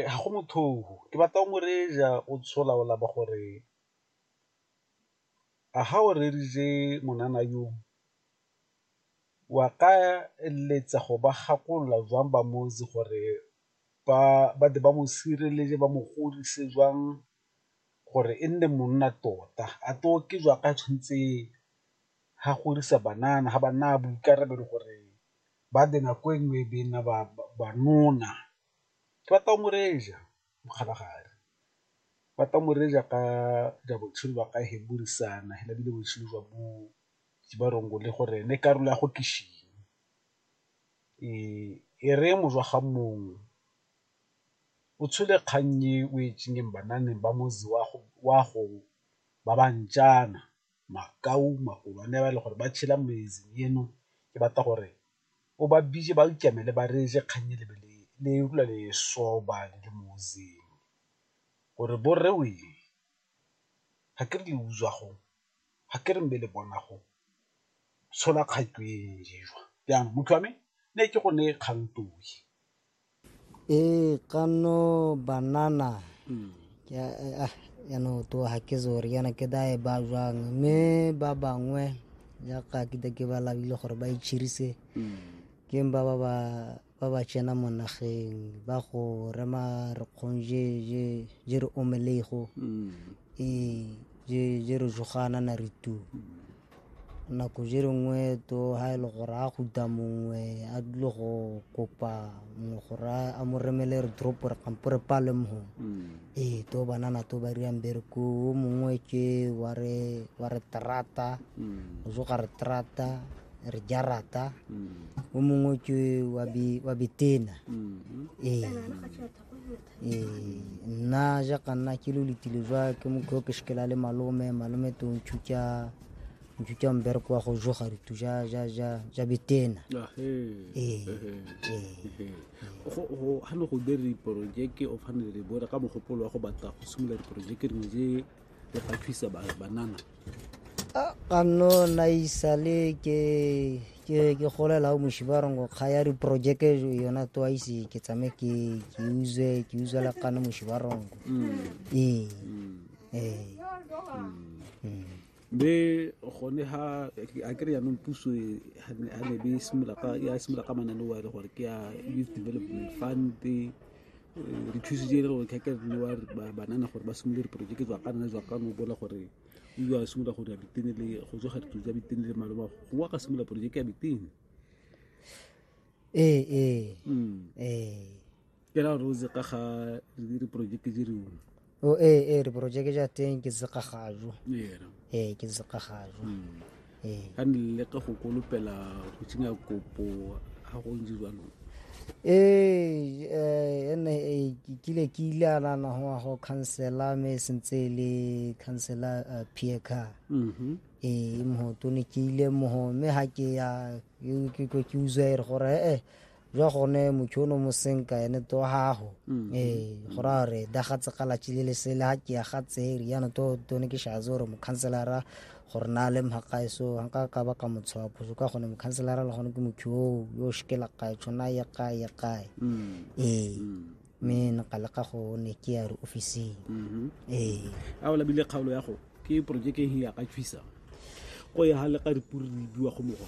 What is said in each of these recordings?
Ga go motho oo, ke batla o mo reja o ntsho laola ba gore, a ga o reeditse ngwanana yo wa ka eletsa go ba gakolola jwang ba motse gore ba tle ba mo sireletse ba mo godise jwang gore e nne monna tota, a tlo ke jwa ka tshwanetseng ga godisa banana ga ba naya boikarabelo gore ba di nako e nngwe e be e nna banona ke batla go mo reja mokgalagadi, ke batla go mo reja ka ja botshelo jwa ka he bo re sana hela ebile botshelo jwa bo Jibarongole le gore ene karolo ya go ke e re mo jwa ga mongwe o tshole kgang e o e banameng ba motse wa go ba ba ntšana. makau magolo a ne ba e le gore ba tšhela metseng eno ke batla gore o ba bitse ba ikemele ba reetse kgang e le utlwa le e sobang le motseng gore bo rre wee ga ke re le utswa go, ga ke re mme le bona go, tshola kgato e jaanong motho wa me ne ke go neye kgang . Eh, kano banana. Hmm. Ya, eh, ah, yana to hake zor yana ke da e ba jwa me ba ba ngwe ya ka ke da ke ba la bile gore ba ichirise. Hmm. Ke ba ba ba ba ba tsena mo nageng ba go rema re kgonje je je re omelego. Hmm. Eh, je je re jogana na re tu. Hmm. nako je re nngwe to ha e le gore a guta mongwe a dule go kopa mongwe gore a mo remele re drop re kampo re pale mho mm. ee to banana to ba riang bereko o mongwe ke wa re wa re trata mm. o zo ga re trata re jarata mm. o mongwe ke wa bi wa bitena mm-hmm. ee ee nna jaaka nna ke lo letile jwa ke mokgwa ke shikela le malome malome to ntšhutša ntšhutša mbereko wa go joga ritu ja ja ja ja betena ee ga ne go dire diporojeke o fane le bone ka mogopolo wa go batla go simolola diporojeke dingwe je le ga thusa banana a ka nno na isale ke ke ke golela o moshi ba reng go kgaya diporojeke yona twice ke tsame ke ke uze ke uze la kana moshi ba reng mm. ee mm. ee mm. be gone ha a kry yanong puso e, ha ne be simolola ka ya simolola ka manane wa e le gore ke ya youth development fund re thusitse e le gore kgakere le banana gore ba simolole diporojeke jwa ka nna jwa ka no bola gore o iwa simolola go dira bitene le go tsoga ditlo tsa bitene le maloma go wa ka simolola porojeke ya bitene ee ee hmm. ee ke ra gore o tse ka ga diporojeke di rengwe o e e re porojeke ja teng ke sekgagajo yena ee ke sekgagajo ee ka ne le ka go kolopela go tsenya kopo ga go ntse jalo ee eh, ene eh, ke kile ke ile a nana go ya go khansela me e sentse e le khansela eh, pierre car Mhm. ee mogoto ne ke ile mogo mme ga ke ya ke- ke ke- ke utswa e re gore ee jwa gone motšhono mo senka ene to gago mm. ee go ra gore dagatse galatši le lesele ga ke ya gatse riano to tone ke shaze gore mokhanselara gore na le mhakae so nka ka ba ka motshwa phoso ka gone mokhanselara le gone ke motho yo yo shikela kae tshwana ya kae ya kae mm. ee mm. mme nka leka go ne ke ya re officing mm-hmm. ee a o labile kgaolo ya go ke projeke ya ka tshwisa go ya ga leka dipuri di biwa go mogwa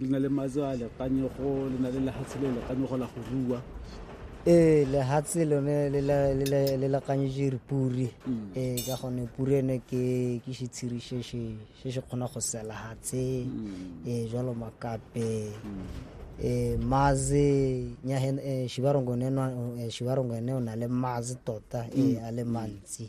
le na le matso a lekanyego le na le lehatshe le lekanyego la go rua ee lehatshe lone le lekanyetse puri mm. ee ka gone puri ene ke ke setshiri se se kgona go sela hatshe mm. ee jalo makape mm. ee maze ee, shibarongo ene o na le maze tota ee a le mantsi